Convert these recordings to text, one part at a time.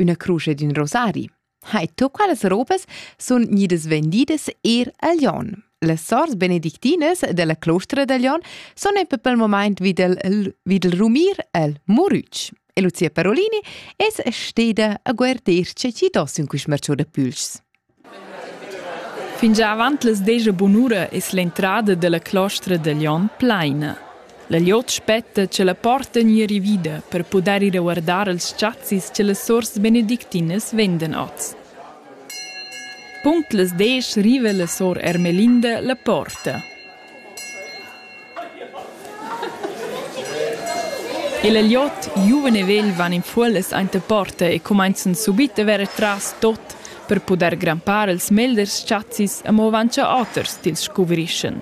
Üna crusch ed ün rosari. Hai, tu qualas robas sun gnidas vendidas eir a Lyon. Las sors benedictinas della clostra da Lyon sun in pel moment vid il, vid il rumir el Murütsch. E Lucia Parolini es steda a guarder che ci dos in quist marciu da pülschs. Fingià avant las desch bunura es l'entrada da la clostra da Glion plaina. La glieud spetta cha la porta gnir rivida per pudair ir a guardar als chazis cha las suors benedictinas vendan oz. Punct las desch riva la sor Ermelinda la porta. Il agliot giuven e vegl van in fuollas aint a porta e cumainzan subit a verer tras tot per pudair grampar els meglers chazis amo avant cha oters tils scuvrischan.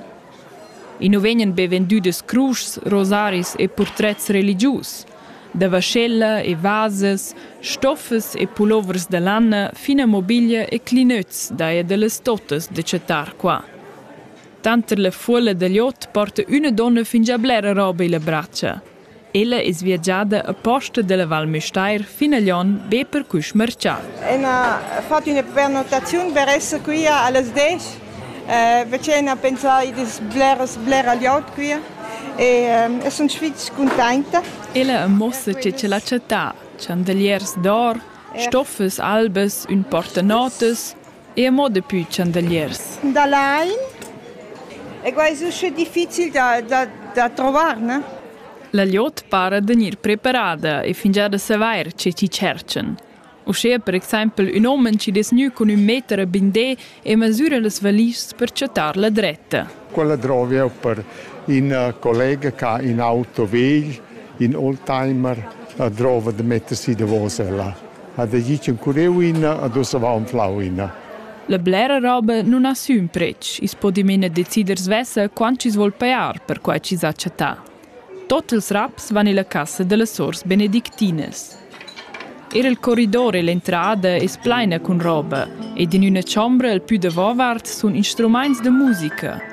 I nu vegnan be vendüdas cruschs, rosaris e purtrets religius. Da vaschella e vasas, stoffas e pulovers da lanna fin a mobiglia e clinöts daja da las totas da chattar qua. Tanter la fuolla da liot porta üna donna fingià blera roba illa bratscha. Ella es viagiada aposta da la Val Müstair fin a Lyon be per culs marchà. Ün ha fat üna prenotaziun per esser quia a las desch. Eh, vecin ha pensà id es bleras blera liot quia e eh, sun fich cuntainta. Ella ammossa che ch'el ha chattà chandeliers d'or, stoffas albas, ün portanotas, Eir mo dapü chandaliers. Da lain. E quai es usche difficil da, da, da trovar, ne? La glieud para da gnir preparada e fingià da savair che chi tscherchan. Uschea per exaimpel ün homen chi dess gnü cun ün meter a bindé e masüra las valischs per chattar la dretta. Quella drovi eu per ün collega ch'ha ün auto vegl, ün oldtimer, drova da metter si davos ella. ha decis curreu ina ad uss avau anflau ina. La blera roba nun ha sün pretsch, i's po dimena decider svessa quant chi's voul pajar per quai chi's ha chattà. Tot ils raps van illa cassa da las sors benedictinas. Er il corridor e l'entrada es plaina cun roba ed in üna chombra al pü davovart sun instrumaints da musica,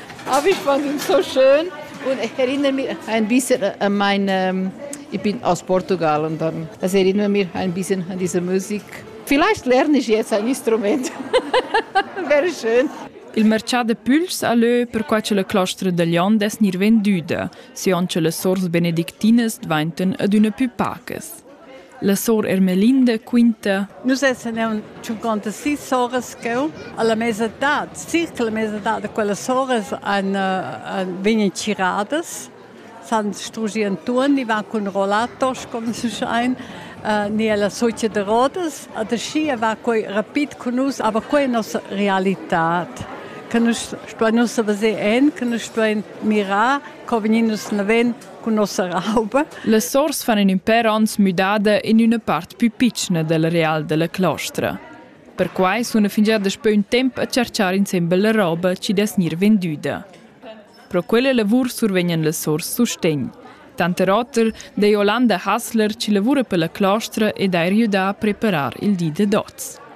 Ah, wie fanden so schön. Und ich erinnere mich ein bisschen an meine, ich bin aus Portugal und dann das erinnert mich ein bisschen an diese Musik. Vielleicht lerne ich jetzt ein Instrument. Wäre schön. Il mercià de Püls a lö perquai che la clostra da Lion dess gnir vendüda, siond che las sors benedictinas dvainten ad üna pü pacas. La sora Ermelinda quinta: Nus essan aunc 56 soras cheu alla mesa d'edat, circa la mesa d'edat da quellas soras ein, ein vegnan tgiradas, san strugi Antuon, i va cun rollator, come si schein, uh, ni alla socia de Rodas, adeschia va quei rapid cun nus, aber quei è nossa realitad che nus stuein ussa veser en, che nus stuein mirar, co vegnir nus naven cun nossa rauba. Las sors fan in in pèr onns müdada in üna part pü pitschna del real della clostra. Perquai suna fingià daspö ün temp a charchar insembel la roba chi dess gnir vendüda. Pro quella lavur survegnan las sors sustegn. Tanter oter dà Jolanda Hassler chi lavura per la clostra ed ha riüdà a preparar il di da dots.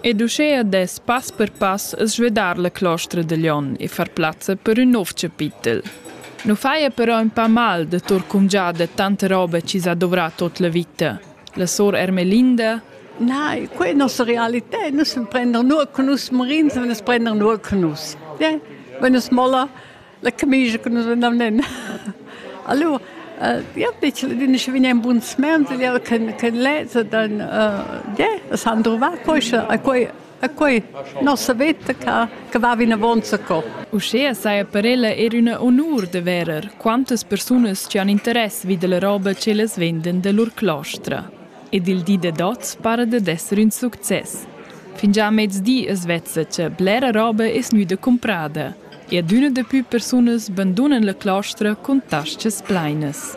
Ed uschea dess pass per pass svedar la clostra da Glion e far plazza per ün nouv chapitel. Nu faja però ün pa mal da tour cumgià da tanta roba chi s'ha dovrà tuot la vita. La sor Ermelinda Nein, quella è nostra realità. Nus prendern nur con nus morins, wenn es prendern nur con nus. Ja? Wenn es molla, La camicia che nus vegnan nen. Allora, ja dice din che vegnan buns mens ja ken ken lezza dann ja es han trovato poi a quei a quei nossa vetta che che va in avanza co. Uschè saja per ella er una onur de verer quantas persunas che han interess vid la roba che les venden de lur clostra. Ed il di de dots pare de d'esser un succes. Fingià mezdi es vezza che blera roba es gnüda comprada. E adüna dapü persunas bandunan la claustra cun tas-chas plainas.